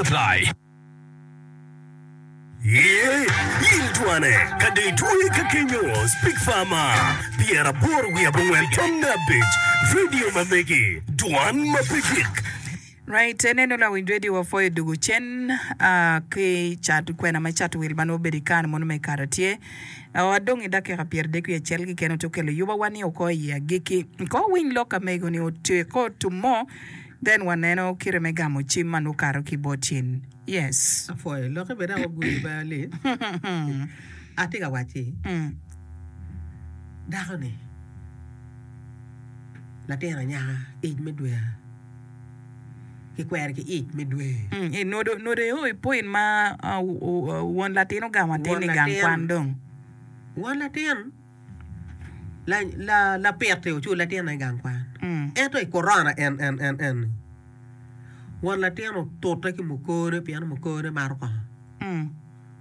Apply. Ye, in twane, ka dong itweye ka kenyo, Speak Farmer, pyeraboro wiye abongwen tamne abic, Radio ma megi, dwan ma pe gik. Right, eneno lawiny radio wa pwoyo dugu cen ah, ki cat kwena me cat wil ma nongo obedo i kare mono me kare tye oh, adong i dakika pyer dek wiye acel keken oto kelo yuba wa ni oko i agiki ko winy lok amego ni otyeko to mo Then waneno kite me gamo cim ma nongo kato ki bot cen. Yes. Apwoyo loki bene ako gudi baa li. Atye ka wacci dako ni latin anyaka ic me dwe aa ki kwere ki ic me dwe. I nodo nodo eo i point ma won latin ogamo atin ni gang kwan dong. Won latin Lapit-ti oculo latinne i gang kwan, ento i korona en-ni, won latin otute ki mukone pien mukone maro kongo.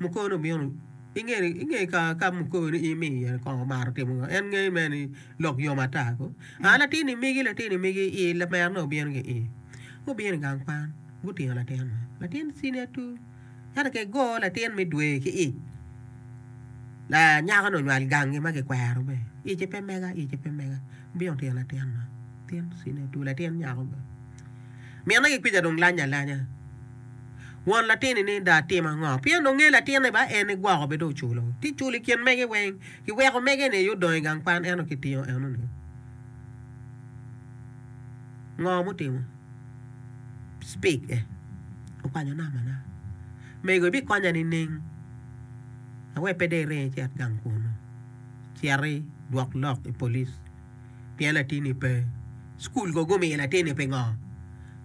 Mukone obino, inge ka mukone imiyo kongo omaro timo ngo, en ngeyo mere ni lok yom ata ko. A latin ni megi, latin ni megi, ii lamerone obino ki ii, gubino i gang kwan, gutingo latin-ni, latin cwinye tur. Ento ka igo latin me dwe ki ic, lanyakoni onywal gangi ma kikwero be, ice pe mega, ice pe mega, wubino tino latin ma, latin cwinye otur, latin nyako be. Minne ki kwija dong lanye alanya. Won latin-ni ni dong atim ango? Pien dong nge latinne ba en ni gwoko bene dong oculo. Ti culo i kin mege weng. Kiweko mege-ni aye odong i gang kwan, ento kitingo enoni. Ngo mutimo? Speak e. Okwanyo nama na. Mego ibikonya nining? Awer pe dong iringo icit gang kunu. Citi dwok lok i police pien latinni pe. School go gumiyo latinni pingo?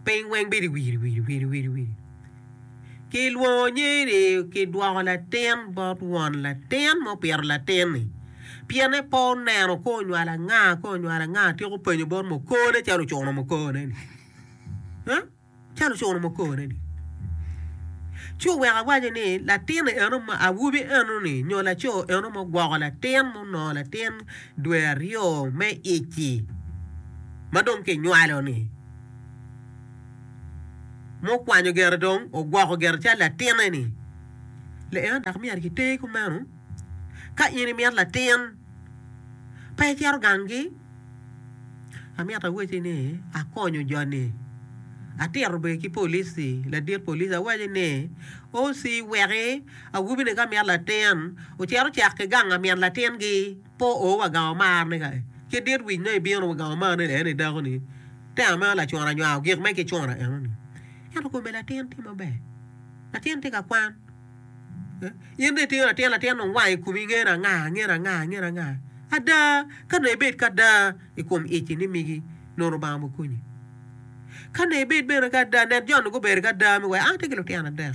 Piny weng bedo wiri wiri wiri wiri wiri. Kilwongo nyeri kidwoko latin bot won latin ma opito latin-ni. Pien en pe oneno ka onywalo anga ka onywalo anga, atyeko openyo bot mukone calo ocuno mukoneni. Huh? Calo ocuno mukoneni. Ci oweko awaco ni latin-ni eno ma awobi eno-ni nyo laco eno ma ogwoko latin munongo latin dwe aryo me ic-ci ma dong kinywalo-ni. ma okwanyo gere dong ogwoko gere calo latinne-ni. Leena dok myero kiter kumeno. Ka in imito latin, pe icito gangi. Amito awacci ni akonyo joni. Atito bene ki polic-ci, ladit polic awacci ni, OC weki awobini ka mito latin ocit ocak ki gang lamin latingi. Po o wa gang omar ni ka ki dit wic ma ibino wa gang omar ni la eni dako ni te ameno lacuna anywao gik me ki cuna eno ni ento kome latin tye maber latin tye ka kwan eh in dong itingo latin latin dong wango i kumi ngene anga ngene anga ngene anga ada ka nongo ibed ki ada i kom ici ni migi nongo Lubanga mo konyi ka nongo ibed bene ki ada net jo nongo gubedo ki ada me wai an atye ki lutino adek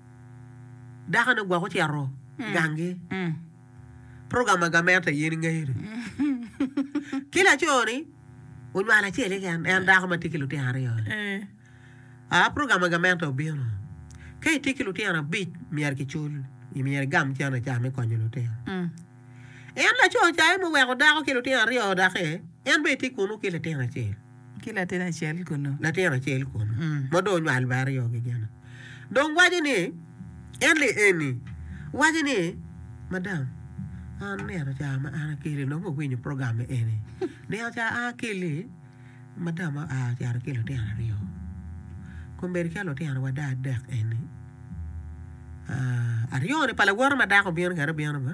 Dakone ogwok ocito ganggi. Program ma gamente yen ingeyo ni ki laco-ni onywalo acel keken en dako ma tye ki lutino aryo. A program ma gamente obino ka itye ki lutino abic myero kicul i myero igam cen aca me konyo lutino. En laco ca en muweko dako ki lutino aryo daki en bene tye kunu ki latin acel. ki latin acel kunnu. Latin acel kunnu ma dong onywal me aryo kikene dong waco ni, En li eni, waco ni, Madam, an nino ca ma an akeli nongo awinyo program eni. Nino ca an akeli, madam oa ocito ki lutino aryo. Kombeddi ka lutino wada adek eni, aryo-ni pa lawote ma dako bino kene bino ma.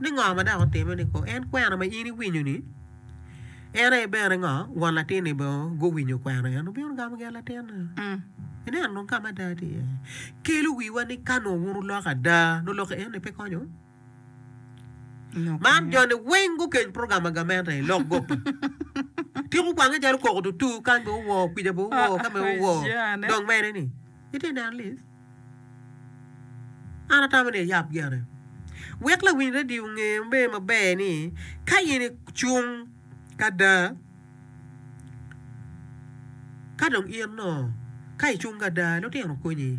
ni ngo ma dok otime ni kong en kwena ma in iwinyo ni en aye bene ngo won latin ni bene guwinyo kwena en obino gamo gen latin ni ineno dong kama ada tye iye kelo wiwa ni ka nongo wun uloko ada nongo lok en ni pe konyo man joni weng gukeny program ma gamente ni lok gopi tiko kwange calo koko tutu kany be owoo kwica be owoo kame owoo dong mene ni itye neno lis An atamo ni ayab gene wek lawiny redio onge me maber ni ka in icung kada ka dong in no ka icung kada lutino konyi.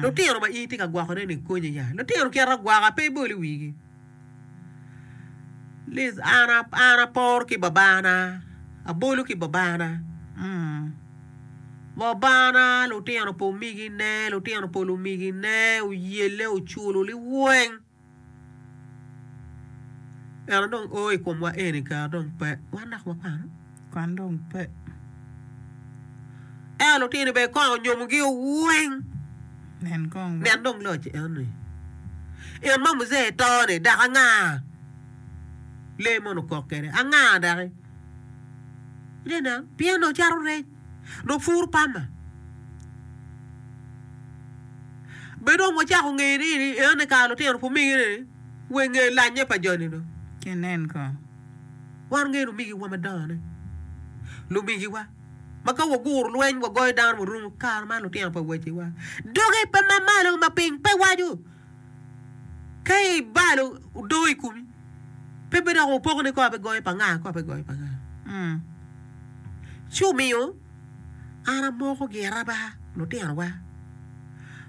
Lutino ma in itye ka gwokone ni konyi ya. Lutino kite agwoka pe ibol i wigi. An apor ki babana, abolo ki babana, babana lutino pa omegine, lutino pa lumegine oyelle oculo liweng ento dong o i komwa eni kara dong pe. Kwan dong pe. Ento lutino bene kong onyomogi weng. Nen kong. Nen dong loc eni. In ma muze itoni dok anga lee mono kok kede? Anga daki? Ine nen, pien nongo cato rec, nongo pur pama. Be dong wacako ngeni ni eni kare lutino pumigi ni wenge lanye pa joni do. Kinen kong. Wan wungeyo lumigiwa madongone, lumigiwa ma ka waguro lweny wagoyo dano warumo, kare man lutino pa waciwa dogi pe ma malo ma piny pe waco. Ka ibalo odoo i kumi pe bedok wupoko ni kor bigoyo pa nga, kor bigoyo pa nga. Mm. Ci omiyo an amokogi araba lutinowa.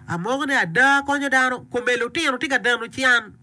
Amoko ni ada konyo dano, kome lutino tye ka dano can.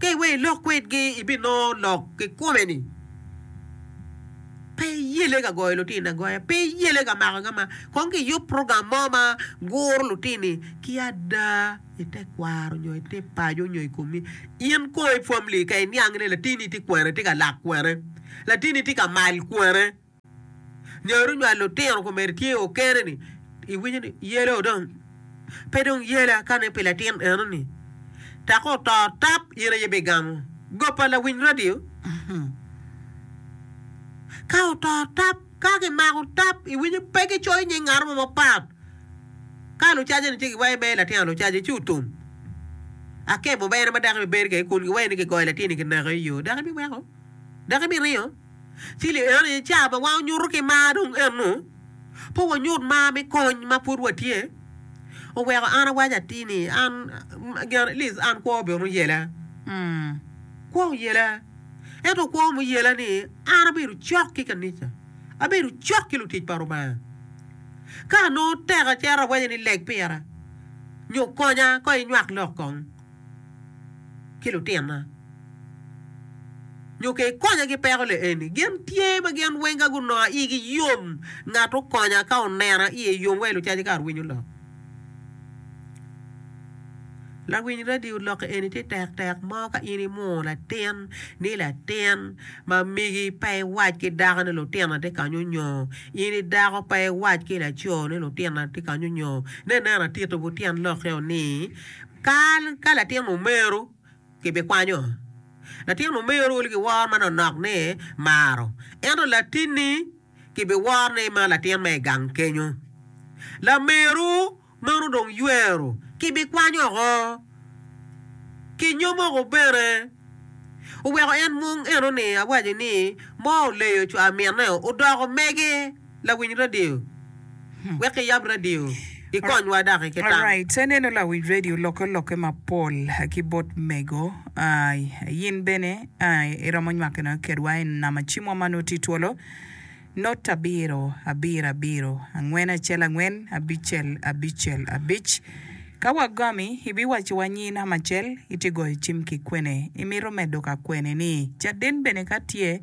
Ka iweyo ilok kwedgi, ibinongo lok kikome ni pe iyelle ka goyo lutino agoya, pe iyelle ka mako agama. Kong kiyub program mo ma guro lutini ki ada i te kwaro nyo i te paco nyo i komi. In kong i family ka iniang ni latini tye kwene, tye ka lak kwene, latini tye ka mal kwene. Nyo runywal lutino komedo tye okene ni iwinyo ni yela odong. Pe dong yela kane pi latin eno ni taka oto tap in aye bi gamo go pa lawiny radio. Ka oto tap ka ki mako tap iwinyo pe ki coyo nying ngato mo mapat. Ka lucaje ni tye ki wayo me latin lucaje ci otum. Akemo bene ma dako bi bedo kede kun gi wayo ni ki goyo latin ni ki neko iyo dako ibi weko? Dako ibi ringo? Cili eno ni ca ma wango nyuto ki mar dong eno. Pe wanyut mar me kony ma pud watye. Oweko an awaco atir ni an gin at least an kwo bene oyela. Mm. Kwo oyela. Ento kwo ma oyela ni an abedo cok ki kanica. Abedo cok ki lutic pa Rubanga. Ka nongo tek acito awaco ni leg pira nyo konya ka inywak lok kong. ki lutinna, nyo ke ikonya ki peko le eni. Gin tye ma gin weng ka gunonga igi yom ngat okonya ka onena iye yom wa ilucaci kar winyo lok. Lawiny radio lok eni tye tek tek mo ka in imwongo latin ni latin ma migi pe iwac ki dako ni lutinna tye kanyo nyo in idako pe iwac ki laco ni lutinna tye kanyo nyo ne neno atito butyen lok eo ni Kal ka latin omeru kibikwanyo latin omeru ki woro ma nonok ni maro, ento latinni kibiworo ni ma latin ma i gang kenyo. Lameru meno dong ywero kibikwanyo oko. Kinyo moko bene oweko en mung eno ni awaco ni mo oleyo co amineo odoko mege. lawiny radio wek iyab radio ikonywa dok ki tam. Alright ce neno lawiny radio lokke olokke mapol ki bot mego yin bene iromo nywake noyo kedwa i nama cimwa ma noti twolo not abiro abiro abiro angwen acel angwen abicel abicel abic ka wagomi ibiwaco wa nyi nama acel itye goyo cim ki kwene imito medo ka kwene ni caden bene ka tye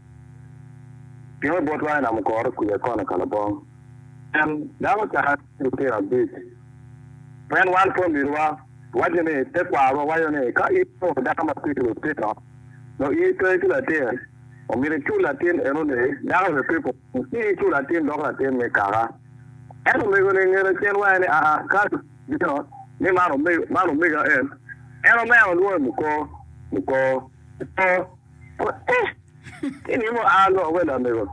Pingo bot lwangge nam ogoro kwir akono ka labong? Pien dano ocako ki lutino abic. Pien wan pol miniwa waco ni tekwarwa waco ni ka in onongo dako ma tye ki lutino nyo in pe ki latin, omyero icul latin eno ni dako nyo pe pwony ci icul latin dok latin me kaka. Ento omego-ni nge lacen wange ni aa ka bino ni man omega en, en omeno lwonge Mukor, Mukor, Mukor. Ki ni mo aa lok welo amego.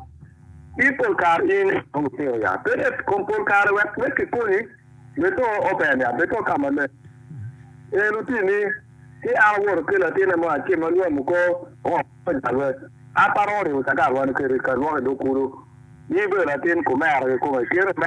Ki pol kare in dong itino ya. Bed et kom pol kare wek me ki konyi. Bed to open ya. Bed to ka ma leng. En oti ni, ki an awoto ki latine mo acim ma lwam oko ongo me jalwe. An pe aromo ryemo cakar wan kede ka lwok idog kulu. Ni bedo latin kumera ki kome. Kite me.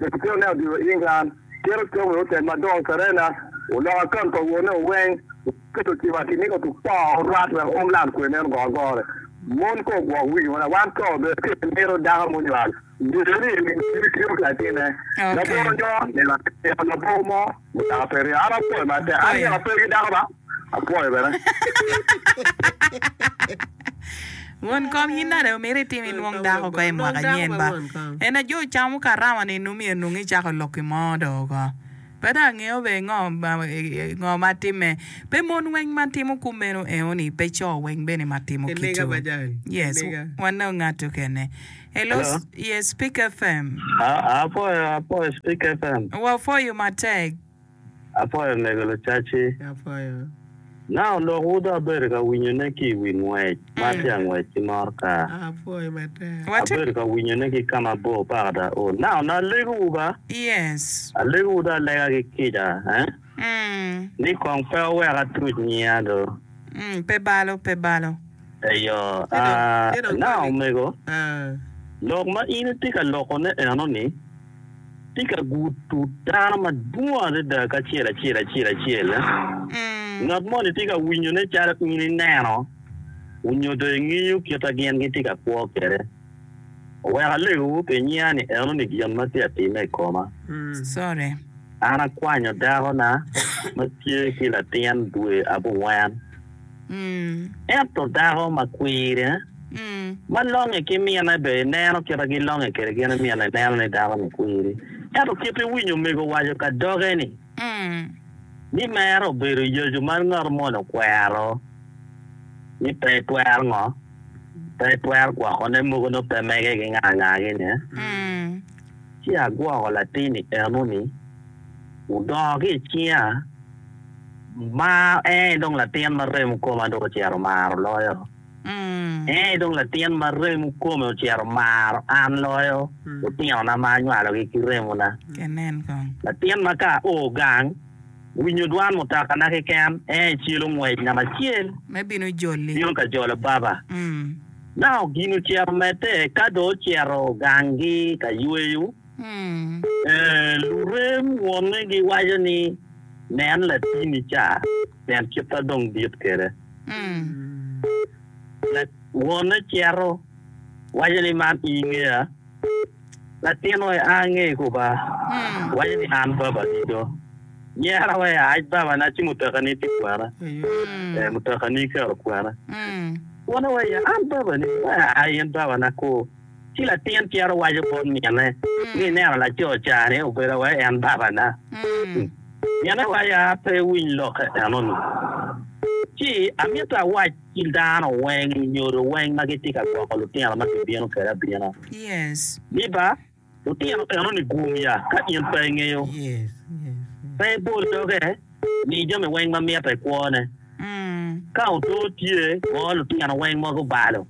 Epiceno ne odiro i England, kiro cam i otel madongo i Serena, oloko akaunt pa wone oweng, oketo cim atir ni otuk poo orwat wek oum lam kwer meno go agore. Mon ko ogwoko wigi wana, wan to obedo tye ki miro dako munywal bedo ni emini tiyo ki latinne. Labongo nyo nino atimo labongo mo mutoka pe ringo, an apwoyo matek, an nino apwoyo ki dako ba, apwoyo bene. Won kom yin nade omito itim inwong dako ko i mwaka nyen ba? Ena jo camo karama ni num ye nung icako lok ki mo do oko. Pedo angeyo be ngo ngo ma timme. Pe mon weng ma timo ku meno eo ni pe co weng bene ma timo kicu. Yes wanno ngatu kene. Hello yes speak fm. Apwoyo apwoyo speak fm. Wa pwoyo matek. Apwoyo mego lucaci. Na onongo wud abedo ka winyone ki i wi ngwec ma atye angwec ki morka. Abedo ka winyone ki ka mabor paka ta ol. Na onongo alegowu ba. Alegowu dong alega ki kica ni kong pe wuwek atuc nyiya do. Eyo. Na omego, lok ma in itye ka lokone enoni. tye ka gudo dano madwong adada kacel acel acel acel. Ngat moni tye ka winyone calo in ineno nyo dong ingeyo kit ma gin gitye ka kwo kwede. Wek alego pi nyiya ni enoni gin ma tye ka timme i koma. An akwanyo dakona ma tye ki latin dwe abongwen Ento dako ma kwirine ma longe ki mine bene ineno kit ma gilonge kwede gin mine ineno ni dako ni kwiri. Ento kit iwinyo omego owaco ka doge ni, ni mere obedo yacu ma ngat moni okwero ni pe etwero ngo? Pe etwero gwoko ne mogo nongo pe mege gi nganga gi ne. Ci agwoko latin ni eno ni. Wudongo ki i cinga, ma en aye dong latin ma remo koma dong ocito maro loyo. En aye dong latin ma remo kome ocito maro an loyo lutinona ma anywalogi ki remona. Latin ma ka ao gang, winyo dwan mutakana keken, en aye celo ngwecna macel bino ka jolo baba. Naka gin ocito medde ka dong ocito ganggi ka yweyo. Lurem wonne giwaco ni, Nen latini ca, pien kitta dong dit kwede. Wonne cito, waco ni, Man i ingeya? Latin-nu aye a ange i kuba, waco ni, An babani do. Nyera wa ia ic babana ci mutekani tye kwena. Ee, mutekani iketo kwena. Wonne wa ia, An babani do, ee, in babana kur. Ci latin cito waco bot mine ni, 'Ineno laco ca-ni obedo wa en babana. Mine waco, 'A, pe iwiny lokke enoni. Ci amito awac ki dano weng nyodo weng ma gitye ka gwoko lutino ma kibino kwede abina, Liba, Lutino enoni guum ya ka in pe ingeyo. Pe ibol doge, mi jami weng ma mitte i kwone. Ka otur tye, ngo lutino weng ma gubalo.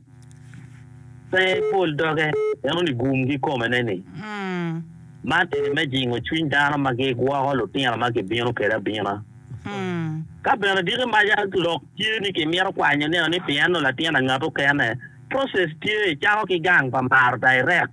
Pe ibol doge, enoni guum gikome ne ni. Man eni me jingo cwiny dano ma gigwoko lutino ma gibino kede abina. Ka bene diki maca lok tye ni ki mito kwanyo nino ni pi eno latin angat okene, process tye icako ki gang pa maro direct.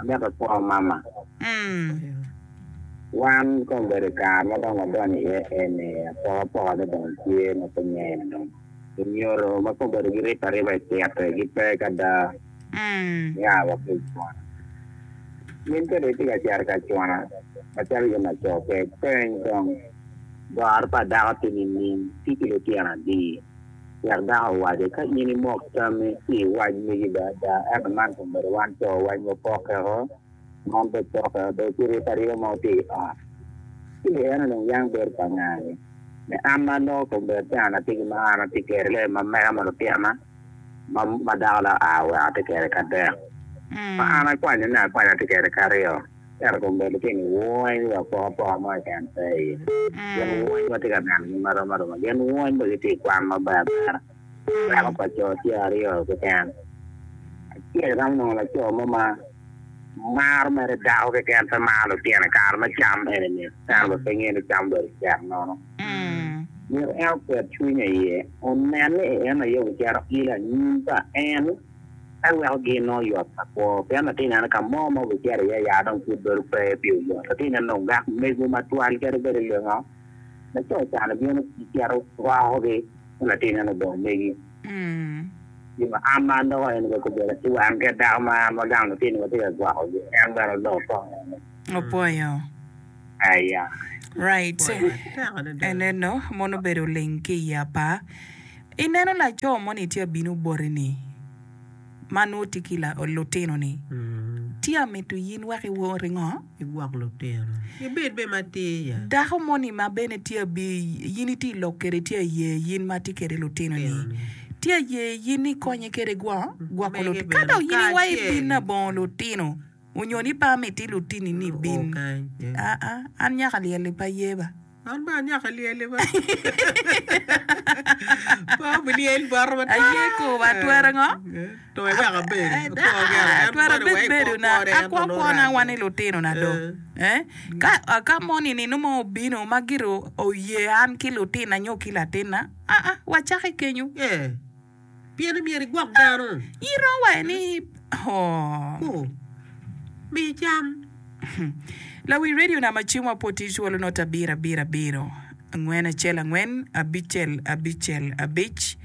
Amito kwo mama. Wan ka obedo i kare ma dong wadonyo iye eni, apokapoka ne dong tye ma pe ngene dong. Lunyodo ma pe obedo giripe ariba i tito gipe kada nia wa ki i cwona. Min ka dong itye ka cito i ka cwona macalo in laco kek, peny kong, Goro pa dako tye nining? Tic ki lutino adi? Wek dako owace, Ka in imok tammi i wac megi bene ada, ento man kong bedo wan co wacni opokkeo, man bed pokkeo dong ci rip ariba ma wutye i ot. Ci bene en onongo yam bedo pa ngani? Me an ma aloko kong bedo calo an ategi ma an atye kede lee ma mega ma lutikna ma dako le oa oweko atye kede ki adek, ma an akwanyone akwanya atye kede ki aryo. Ento kong bed gitye ni wony wa poko apoka mo keken pe i ye. Gin wony watye ka neno gi marom aroma. Gin wony bene gitye i kwan ma ber bera. Lwak pa co tye aryo keken. Acel iromo nongo laco mo ma maro mere dako keken pe maro lutyene kare me cam eni mit. Ento bene pe ngeyo ni cam obedo cek nono. Myero en oket cwinye i ye onen ni en aye ocito ilo anyim pa en. En weko gin nongo yot pa kwo, pien atye neno ka mo ma wubicito iye ya dong pud bedo pe pi oyot. Atye neno dong gak mego ma twal kadi bed i lingo ma co can ibino cito irokogi, ento atye neno odong megi. Gin ma an ma an doko en wek obedo ki wan kit dako ma an ma gang lutino watye ka gwokogi, en bene odong kong. Opwoyo. Aya. Right. Eneno mon obedo oling ki i apa. I neno laco moni tye abino boti ni ma nwo tye ki lutino ni tye amito yin wek i wor i ngo? I gwok lutino. I bed be ma tye ya. Dako moni ma bene tye abi yin itye i lok kede tye aye yin ma tye kede lutino ni tye aye yin ikonye kede gwo gwoko lutino. Ka dong yin iwa ibino abongo lutino. Onyo ni pe amiti lutini ni bin? Aa, an nyaka lyel-li pe ayeba. An bene anyaka lyel-li pe. Pe wulyel bota matar. Aye kor wa twero ngo? To wek abed. Ada, twero abed bedo na akwo kwona wa ni lutino na do. Aa, ka moni ni nongo obino ma gire oye an ki lutina nyo ki latina, aa, wacaki kenyu. Pien imyero igwok dano. Iro wa ni ku mi cam. Lawi radio na ma cing wa po tic walo not abiro abiro abiro angwen acel angwen abicel abicel abic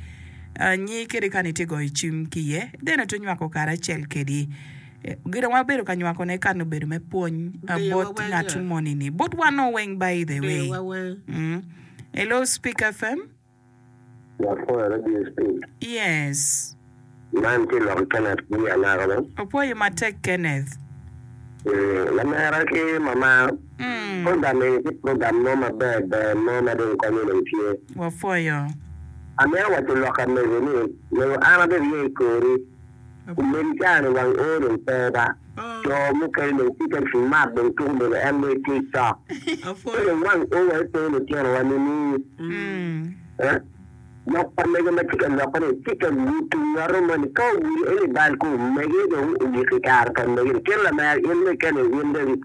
anyi kede kani tye goyo cim ki iye then oto nywako kare acel kedi gina wa bedo ka nywako ne kani obedo me pwony abot ngat moni ni but wano weng by the way hello speak FM. Lok mo eno DSP. Yes. Man tye lok i Kenneth gi anaka bene. Opwoyo matek Kenneth. Eeh lamera ki mama. Mm. Program eni tye program mo maber ber mo ma dong konyo dong tye. Wapwoyo. Amito waco lok ka mego ni, mego an abedo iye i kori. Kun meno caa-ni wang oo dong pe ba, co mukene dong tye ka mak dong tuku bene en lwec ki i cok. Pe dong wang oo wa epe litinowa nini? Lok pa mege ma tye ka lokkene tye ka nyutu nyoto moni, ka ogudo en i bal ku omege dong ogiki kare pa mege-ni. Cen lamera in bene kene in David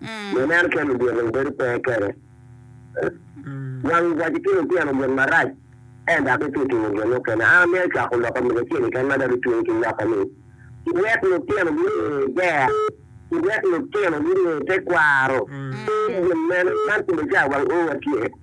Me meno keni omyero dong bedo pe kene. Wang waco ki lutino gin marac en dok itye timo gin mukene. An amito cwako lok omege acel keken ma dok gitweye ki nyoka ni, Kiwek lutino gunge ger, kiwek lutino gunge tekwaro, ki gin mene, man kome ca wang owa tye.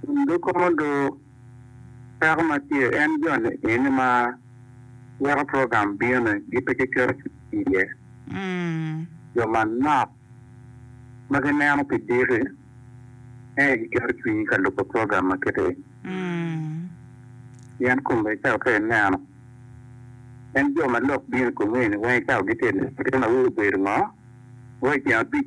Kun doko modo peko ma tye en jo ni-ni ma weko program bino-ni gi pe giketo ki iye. Jo manok ma gineno pi diki ene giketo cwinyi ka lubo program ma kiti-ni. Pien kome cawa ka ineno, en jo ma lok bino i komi-ni weng cawa gitye i lok. Pien awobi obedo ngo? Weko i tyen abic.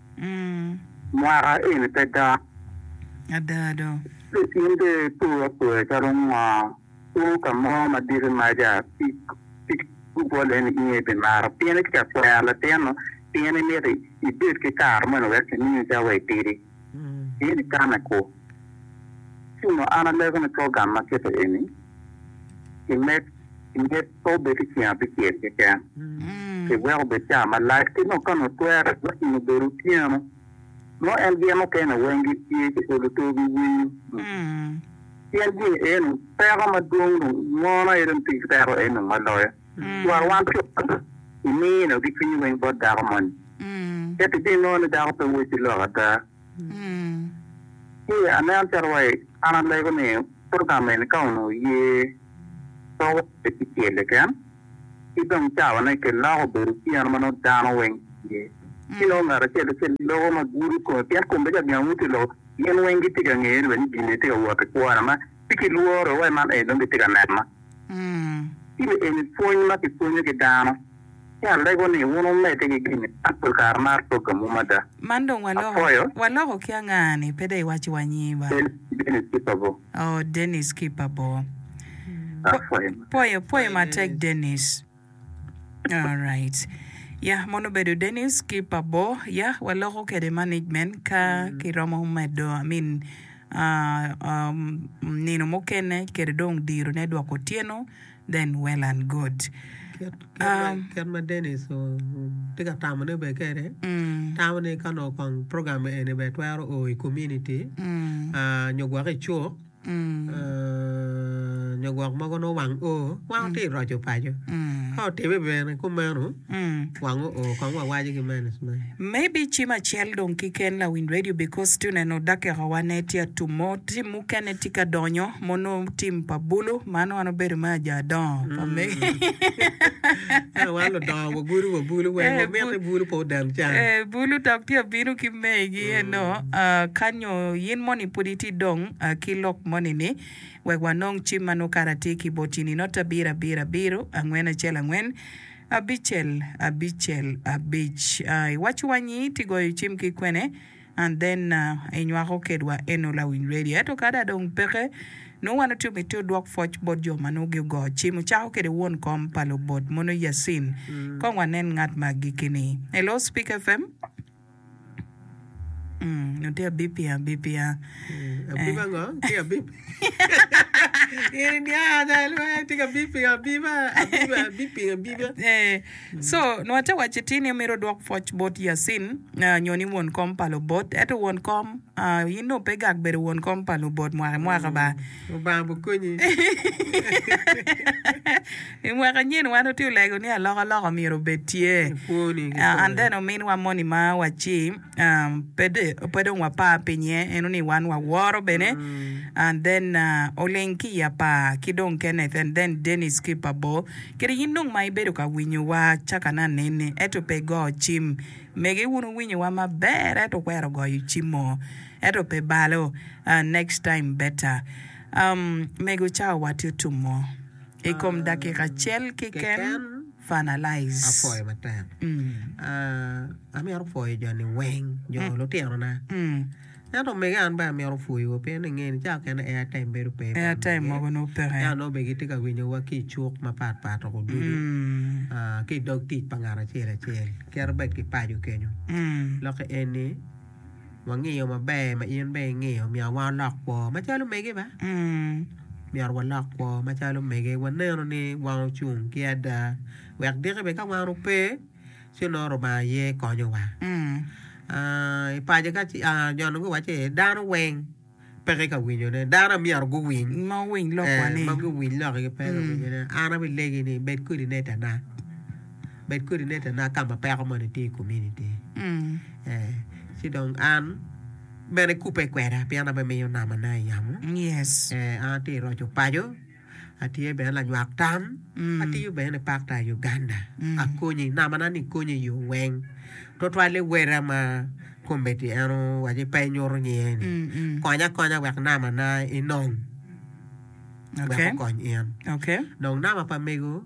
Mwaka eni pe dok. Ada do. In be ipoyo apoya calo ngo? Wo ka mo ma diki maca tic gubol eni inge i pi maro pien itye ka kwero latinnu pien imito ibed ki kare moni wek kimini cawa itidi. In ikame kur. Ci onongo an aleko ni program ma kite eni kimed i nget pe obed ki ceng abicel keken, kiweko obed caa malac, ki nongo ka onongo twere onongo obedo otyeno mo en gen mukene weng gitye ki olo tor giwinyo. Pien gin eno peko madwong dong mono aye dong tye ki peko eni dong ma loyo. Twero wan co imiyo nongo ki cwinyi weng bot dako moni, ento ibinongo ni dako pe woti lok ada. Ci aneno calo wa an alego ni program eni ka onongo oye pe wacce ki cel keken, ki dong cawane kiloko obedo otyeno ma nongo dano weng tye, ci nongo ngat acel acel loko ma gudo kome pien kome bedo calo gin angut iloko, gin weng gitye ka ngeyone bene ni gin eni tye ka wot i kwona ma ci kilworo wa man ee nongo gitye ka nena. Ci eni pwony ma kipwonyo ki dano. Ci alego ni wun wumedde ki gin mapol kare ma aroggamu mada. Man dong waloko, waloko ki anga ni pe dong iwaco wa nyingi ba? Dennis Kipabor. Oh, Dennis Kipabor. Apwoyo matek. Pwoyo, pwoyo matek Dennis. Alright. Yah, mono obedo Dennis Kipabor. Yah, waloko kede management ka kiromo medo, I mean, aa, aa, nino mukene kede dong dirone dok otyeno. than well and good. Kit ma Dennis tye ka tamo ne bene kede tamo ni ka onongo kong program eni bene twero o i community nyo gwok i cuk nyo gwok mogo nongo wang o wang otye i roco paco ka otime bene kumeno wang o o kong wawaco ki mene cen. Maybe cim acel dong kiken lawiny radio because tye neno dakika wa ne tye atum mo. mukene tye ka donyo ma onongo tim pa bulu man wan obedo me ajo adongo pa mege ento wan ludongo wagudo wa bulu weng eh, omit ni bulu pe odam can eh, bulu dok tye abino ki megi eno ah, kanyo in moni pud itye dong ah, ki lok moni ni wek wanong cim ma nongo kara tye ki boti ni not abiro abiro abiro angwen acel angwen abicel abicel abic ah, iwaco wa nyi iti goyo cim ki kwene and then uh, inywako kedwa eno lawiny radio. Ento kada dong peke, nongo wan otye mitte odwok pwoc bot jo ma nongo gigo cim, ocako kede won kom pa lubot mono Yacine. Kong wanen ngat ma agikki-ni. Hello Speak FM? Mm, nongo tye abipia abipia. Abip ango? Tye abip. In iniang ada lwe, tye ka bip pingo abiba, abiba, abip pingo abiba. Eh, Co, nongo ate waco itir ni omito odwok pwoc bot Yacin, ah, nyo ni won kom pa lubot. Eto won kom, ah, in dong pe gak bedo won kom pa lubot mwaka i mwaka ba. Lubanga bu konyi. I mwaka nyen wan otye olego ni aloka loka omyero obed tye. Kwoni ki Ah, and kome. then ominwa moni ma waci, ah, pe de, pe dong wapar piny iye, en oni wan waworo bene. And then, ah, oling ki i apar ki dong Kenneth and then Dennis ki Pabor. Kadi in dong ma ibedo ka winyowa caka na neni ento pe igo cim, mege wun wuwinyowa maber ento wukwero goyo cimo ento pe balo, next time better. Mego cawa watye otumo i kom dakika acel keken finalize. Ento omege an bene amito pwoyo wa pien inge ni cawa kene air time bedo pe pa omege yat nongo bene gitye ka winyo wa ki icuk mapat pat o ducu ki idog tic pa ngat acel acel kit bed ki paco kenyo loki eni wangiyo maber ma in bene ingiyo myero wa walok kwo macalo omege ba myero wa lok kwo macalo omege waneno ni wan ocung ki ada wek diki bene ka wan ope. Ci onongo Rubanga aye konyowa. I paco ka jo onongo giwaco ni dano weng peke ka winyone. Dano aye myero guwiny. Ma guwiny lokwane. Ma guwiny lokke pe ka winyone. An abilegi ni bed kodi netana. Bed kodi netana ka ma peko moni tye i komuniti. Ci dong an bene kubbe kweda pien an aye aminiyo namana i yamo. An atye ka roco paco. Atye bene lanywak tam, atiyo bene ni Pakta i Uganda. Akonyo i namana ni konyo i yo weng, twatwal ni wada ma kombeddi en owaco ni pe inyuto nyinge ni. Konya akonya wek namana enong wek okony in. Dong nama pa mego.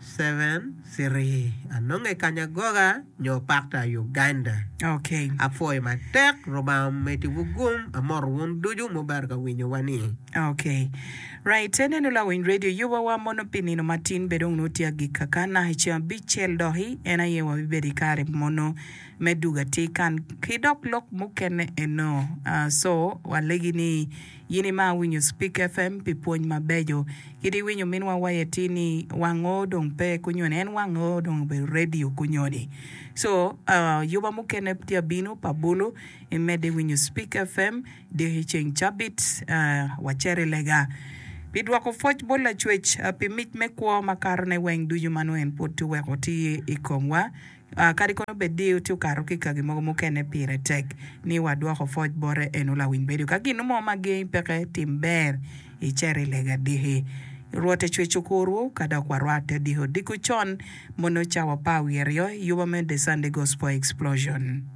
Seven three anonge kanya goga nyo pakta Uganda apwoyo matek rubanga omedi wu gum amoto wun ducu mubero ka winyo wa ni. Ok right enenu lawiny radio yuba wa mono pi nino matin bedo ongo tye agika ka naka i ceng abic cel doki en aye wa bibedo i kare mono me duga tye kan ki dok lok mukene eno so wa legi ni In imaro winyo Speak FM pi pwony mabeco. Kit iwinyo minwa waye ti ni wang oo dong pe kunyoni en wang oo dong obedo radio kunyoni. So yuba mukene tye abino pa bulu imedde winyo Speak FM diki ceng cabit wacere i lega pi dwoko pwoc bot lacwec pi mic me kwo makato ne weng ducu manongo en pwod tye weko ti ikomwa. Kadi kono bed ni watye okato ki i kagi mogo mukene pire tek ni wadwoko pwoc bote, en olawiny bedo ka gin mo ma gengi peke. Tim ber, icer i lega adiki. Rwot ecwec okurwu ka dok warwatte odiko odiko con mono cawa pa awiryaryo yuba me The Sunday Gospel Explosion.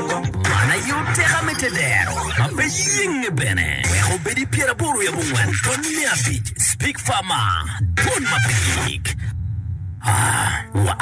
Man aye oteka me te dero ma pe yenge bene wek obed i pyeraboro i abongwen pwony me abic, Speak Far Mar, Dwon ma pe gik.